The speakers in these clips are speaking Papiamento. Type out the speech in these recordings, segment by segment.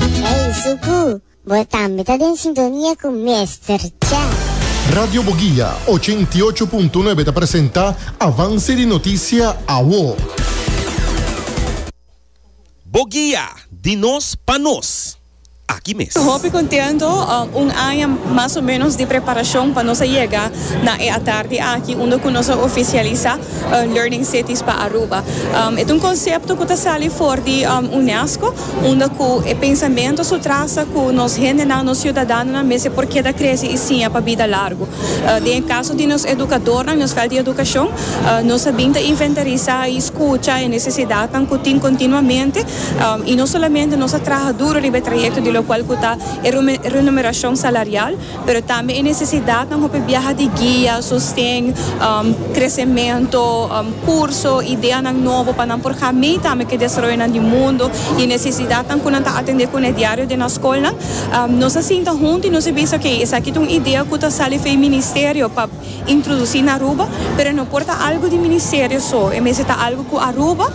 Ey Zuku, bo tambe ta den sintonia cu Mester Cha. Radio Boguia ochenta i ocho punto nuebe ta presenta Avance di Noticia Awo. Boguia, di nos pa nos. Aki mes. Hopi contento, un aña mas o menos di preparacion pa nos a yega na e atardi aki unda cu nos a oficialisa Learning Cities pa Aruba. E ta un concepto cu ta sali for di UNESCO. unda ku e pensamentu su trasa ku nos hendenan, nos siudadanonan mester por keda krese i siña pa bida largu. Den e kaso di nos edukadornan, nos fèlt di edukashon, nos a bin ta inventarisá i skucha e nesesidatnan ku tin kontinuamente, i no solamente nos a traha duru riba e trayekto di lokual ku ta e renumerashon salarial, Pero tambe e necesidadnan hopi biaha di guia, sosten, crecemento, curso, ideanan nobo pa nan por ga mee tambe cu e desaroyonan di mundo y e necesidadnan cu nan ta atende cun'e diario den nan scolnan. Nos a sinta hunto y nos a bisa, Oke, esaki ta un idea cu ta sali for e Ministerio pa. introduci na Aruba, pero e no por ta algo di Ministerio so, e mester ta algo cu Aruba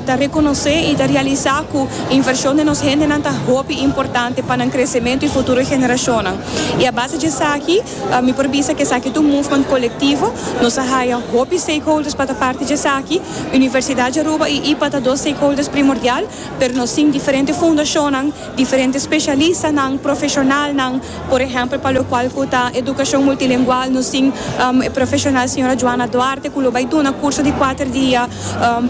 ta reconoce y ta realisa cu inversion den nos hendenan ta hopi importante pa nan crecemento y futuro e generacionnan. Y a base dje esaki mi por bisa cu esaki ta un movement colectivo, nos a haya hopi stakeholders pa ta parti dje esaki, Universidad dje Aruba y IPA ta dos stakeholders primordial, pero nos tin diferente fundacionnan, Diferente spesialistanan, profeshonalnan, por ehèmpel pa lokual ku ta edukashon multilengual nos tin e profeshonal señora Joana Duarte ku lo bai duna kurso di kuater dia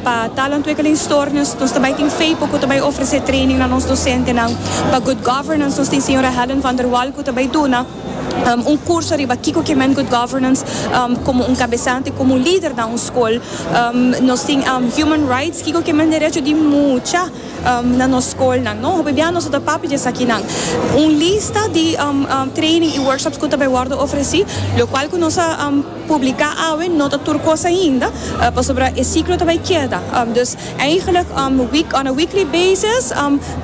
pa talantwikkelingstoornis. Nos ta bai tin Feypo ku ta bai ofresé training na nos dosentenan. Pa Good Governance nos tin señora Helen van der Wal ku ta bai duna un kurso riba kiko ke men Good Governance komo un kabesante, komo un lider na un skol. Nos tin Human Rights, kiko ke men derecho di mucha. Na nos skolnan no hopi bia nos a ta papia di esakinan. Un lista di training i workshops ku ta bai wòrdu ofresí, lokual ku nos a publiká awe no ta tur kos ainda, pasobra e siklo ta bai keda. Dus eigentlik on a weekly basis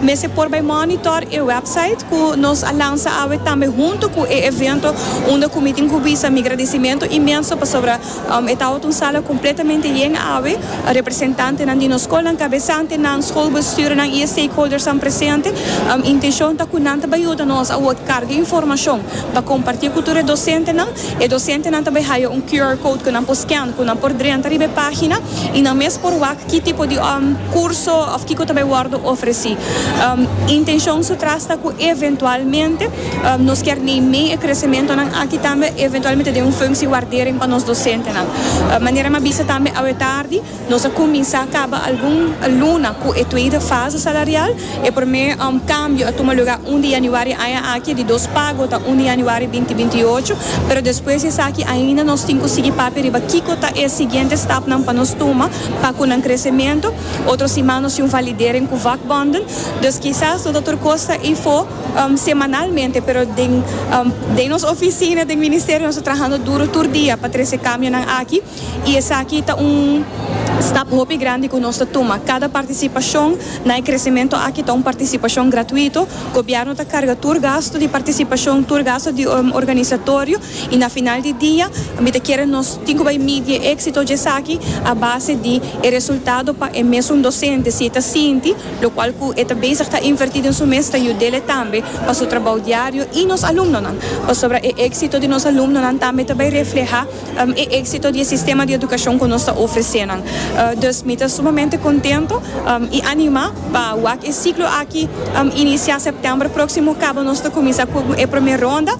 mester por bai mònitor e wèpsait ku nos a lansa awe tambe huntu ku e evento unda ku mi tin ku bisa mi gradisimentu inmenso pasobra E tabata un sala completamente yen awe, representantenan di nos scolnan, cabesantenan, scolbestuurnan y e stakeholdersnan presente. Intencion ta cu nan ta bay yuda nos a word carga informacion pa comparti cu tur e docentenan. E docentenan ta bay haya un QR code cu nan por scan, cu nan por drenta riba e pagina y nan mes por wak ki tipo di curso of kico ta bay wordo ofreci. Intencion su tras ta cu eventualmente. Nos kier nei mei e kresimentonan aki tambe eventualmente den un funksie wardering pa nos dosentenan. Manera mi a bisa tambe awe tardi, nos a kuminsá kaba algun luna ku e tweede fase salarial. E promé kambio a tuma lugá un di yanüari aña aki, di dos pago ta un di yanüari binti binti i ocho. Pero despues di esaki ainda nos tin ku sigui papia riba kiko ta e siguiente stapnan pa nos tuma pa ku nan kresemento. Otro siman nos tin un validering ku vakbonden. Dus kisas no ta tur kos ta ei for. semanalmente pero den den nos oficina den ministerio nos ta trahando duro tur dia pa trece camionan aki y esaki ta un stap hopi grandi cu nos ta tuma cada participacion na e crecemento aki ta un participacion gratuito gobierno ta carga tur gasto di participacion tur gasto di organisatorio y na final di dia mi ta kere nos tin cu bay midi e exito dje esaki a base di e resultado pa e mesun docente si e ta sinti lokual ku e ta bezig ta invertí den su mes ta yud'e tambe pa su trabou diario i nos alumnonan, pasobra e éksito di nos alumnonan tambe ta bai reflehá e éksito di e sistema di edukashon ku nos ta ofresé nan. Dus mi ta sumamente kontentu i animá pa wak e siklo aki inisiá sèptèmber próksimo kaba nos ta kuminsá ku e promé ronda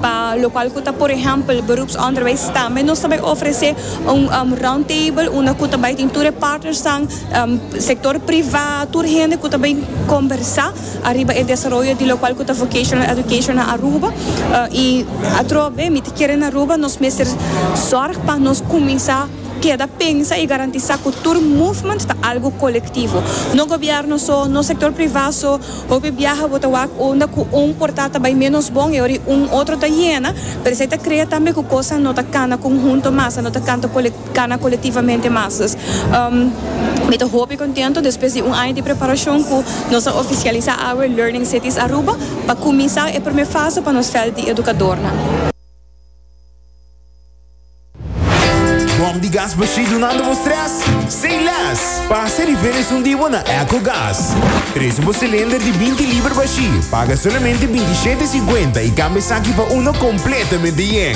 pa lokual ku ta por ehèmpel beroepsonderwijs tambe nos ta bai ofresé un roundtable unda ku ta bai tin tur e partnersnan Sector priva, tur hende cu ta bay combersa ariba e desaroyo di locual cu ta Vocational Education na Aruba. Y atrobe mi ta kere na Aruba nos mester zorg pa nos cuminsa keda pensa y garantisa cu tur movement ta algo colectivo. No gobierno so, no sector priva so. Hopi biaha bo ta wak unda cu un porta ta bay menos bon y ora y un otro ta yena. Pero esey ta crea tambe cu cosnan no ta cana conhunto mas, no ta canta colectivo. Cana colectivamente mas. Mi ta hopi contento despues di un aña di preparacion cu nos a oficialisa awe Learning Cities Aruba pa cuminsa e prome fase pa nos veld di educadornan. Bom di gas bashí dunando bo stress? Say less! Pasa riba e esun di bo na Echo Gas. Trece bo cilinder di binti liber bashí, paga solamente binti shete cincuenta y cambia esaki pa uno completamente yen.